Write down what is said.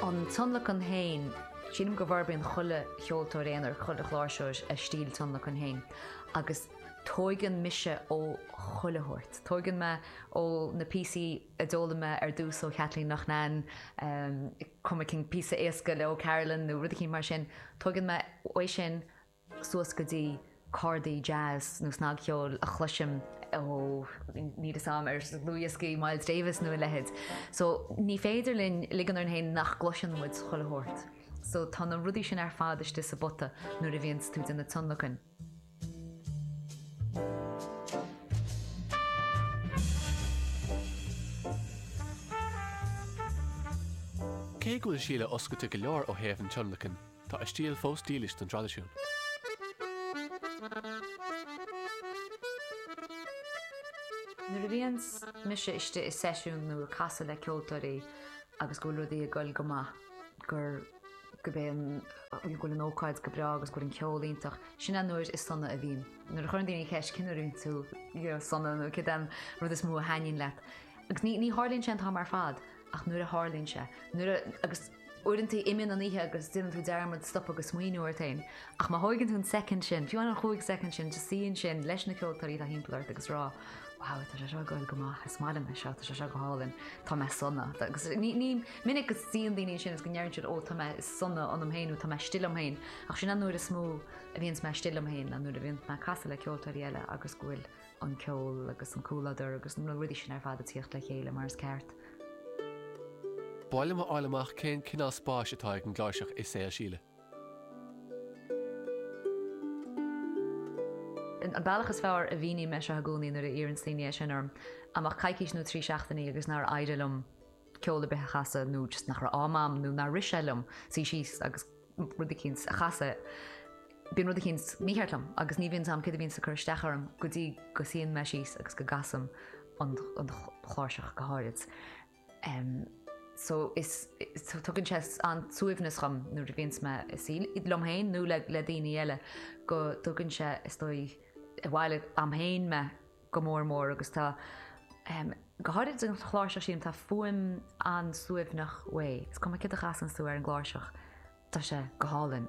An tionlacan féin, sílim go bhforbraíonn chuile cheoltóir aonair, chuile chláirseoir a stíl tionlacain féin agus tóigeann mise ó chuile shórt. Tóigeann mé ó na píosaí a d'fhoghlaim mé ar dtús ó Khathleen Loughnane, cuma cén píosa éasca le O'Carolan nó rud eicínt mar sin, tóigeann mé uaidh sin suas go dtí cordaí jazz nó snagcheoil a chloisim ó níl a fhios a'm ar dhlúthdhioscaí Miles Davis nó a leithéid. So ní féidir linn ligean orainn féin nach gcloiseann muid chuile shórt. So tá na rudaí sin ar fad istigh sa bpota nuair a bhíonns tú ag déanamh tionlacain. Cé go bhfuil Síle oscailte go leor ó thaobh an tionlacain, Tá a stíl fós dílis don traidisiún. Nuair a bhíonn mise istigh i seisiún nó ag casadh le ceoltóirí agus go bhfuil rudaí ag goil go maith, gur go b'é go bhfuil an ócáid go breá agus go bhfuil an ceol iontach, sin an uair is sona a bhíonn. Nuair a chuireann daoine ceist cén uair a bhíonn tú sona nó céard é an rud is mó a thaitníonn leat. Agus ní tharlaíonn sé an t-am ar fad ach nuair a tharlaíonn sé. Agus Uaireanta imíonn an oíche agus déanann tú dearmad stopadh agus smaoineamh ort féin. Ach má thóigeann tú an soicind sin, fiú amháin an chúig soicind sin, just suí ansin leis na ceoltóirí atá thimpeall ort agus rá, wow, tá sé seo ag goil go maith, is maith liom é seo, tá sé seo go hálainn, tá mé sona. Agus ní, ní minic go suíonn daoine ansin is go ndeireann siad ó tá mé sona ionam féin nó tá mé istigh liom féin, ach sin an uair is mó a bhíonns mé istigh liom féin, an uair a bhíonn mé ag casadh le ceoltóirí eile agus go bhfuil an ceol agus an comhludar agus na rudaí sin ar fad ag tíocht le chéile mar is ceart. B'áil liom a fháil amach cén cineál spáis atá ag an gcláirseach i saol Síle. An bealach is fearr a mhíníonn mé seo i gcónaí nuair a iarranns daoine é sin orm, dá mbeadh coicís nó trí seachtainí agus nár éirigh liom ceol ar bith a chasadh nó just nach raibh am agam nó nár rith sé liom suí síos agus rud eicínt a chasadh, bíonn rud eicínt mícheart liom agus ní bhíonn a fhios a'm céard a bhíonns ag cur isteach orm go dtí go suíonn mé síos agus go gcasaim an chláirseach go háirid. So just tugann sé an-suaimhneas dhom nuair a bhíonns más liom féin nó le daoine eile, go dtugann sé is dóigh abhaile a'm féin mé. go mór mór agus tá, go háirid an chláirseach sin, tá fuaim an-suaimhneach uaidh. Is cuma céard a chasanns tú ar an gcláirseach, tá sé go hálainn.